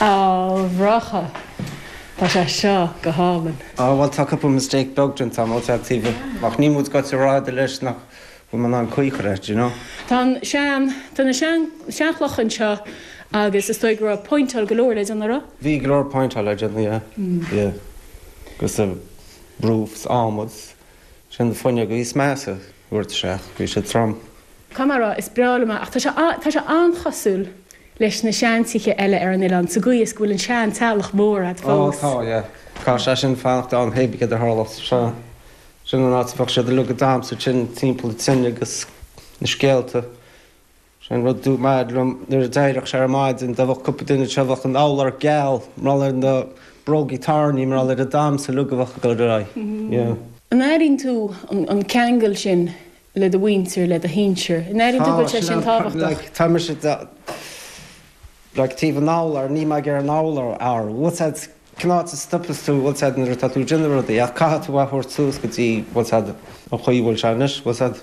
A Mhurchadh, tá sé seo go hálainn. Á, bhuel, tá cúpla mistake beag déanta agam ó chead taoibh, ach ní móide go bhfuil tú ag rá tada leis nach bhfuil mé in ann caoi chur air, do you know? Tá an sean, tá na sean, seanchloch anseo agus is dóigh go raibh pointeáil go leor le déanamh, raibh? Bhí go leor pointeáil le déanamh, yeah, yeah. Agus roof 's adhmad 's. Sin na fuinneoga is measa a thabhairt isteach. Bhí siad trom. Conamara, is breá liom é ach tá sé an-chosúil leis na seantithe eile ar an oileán sa gcaoi is go bhfuil an seanteallach mór agat fós. Ó, tá, yeah. Tá sé sin fanacht ann pé ar bith céard a tharlós. Sin an áit a bheadh siad uilig ag damhsa ansin timpeall tine agus na scéalta. Sin rud a bhain liom nuair a d'éiríodh sé ar maidin, dá mbeadh cúpla duine anseo bheadh an urlár geal, mar gheall ar na brógaí tairní, mar gheall ar an damhsa uilig a bheadh ag dul ar aghaidh. Yeah. An airínn tú an ceangal sin le do mhuintir, le do shinsir? An airínn tú go bhfuil sé sin tábhachtach? Tá mise like taobh an urlár níl mé ag iarraidh an urlár bhfuil a fhios agat cén áit a stopas tú bhfuil a fhios agat nuair atá tú ag déanamh rudaí ach caithfidh tú a thabhairt suas go dtí bhfuil a fhios agat an chaoi a bhfuil sé anois bhfuil a fhios agat.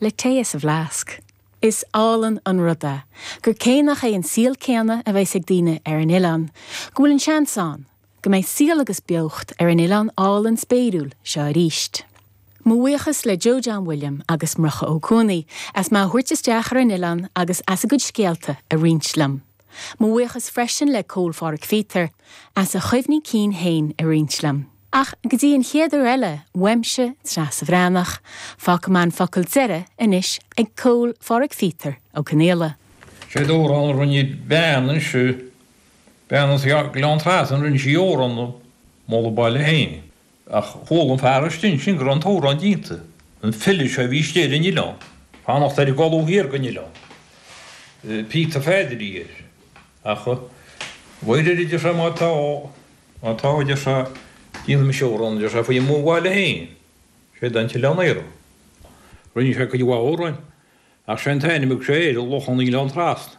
le tae as a bhfleasc. Is álainn an rud é gur cé nach é an saol céanna a bheas ag daoine ar an oileán, go bhfuil an seans ann go mbeidh saol agus beocht ar an oileán álainn spéiriúil seo aríst. Mo bhuíochas le Joe John William agus Murchadh Ó Cuanaí as mé a thabhairt isteach ar an oileán agus as a gcuid scéalta a roinnt liom. Mo bhuíochas freisin le Cóil Phádraig Phíotair as a chuimhní cinn féin a roinnt liom. Ach go dtí an chéad uair eile, uaimse, Treasa Bhreathnach, fágfaidh mé an focal deiridh anois ag Cóil Phádraig Phíotair Ó Conaola. Sé an t-amhrán a rinne bean ansin, bean as Gleann Trasna, rinne sí amhrán ag moladh a baile féin. Ach chuala an fear istigh ansin go raibh an t-amhrán déanta, an file seo a bhí istigh ar an oileán, fanacht ar an gcolbha thiar den oileán, Peter Pheaid a bhí air. Ach mar a deir sé, má tá, má tá, a deir sé, déanfaidh mise amhrán, a deir sé, faoi mo bhaile féin, séard é an tOileán Aerach. Rinne sé cuid mhaith amhráin, ach sé an t-ainm a thug sé air, Loch an Oileáin Trasna.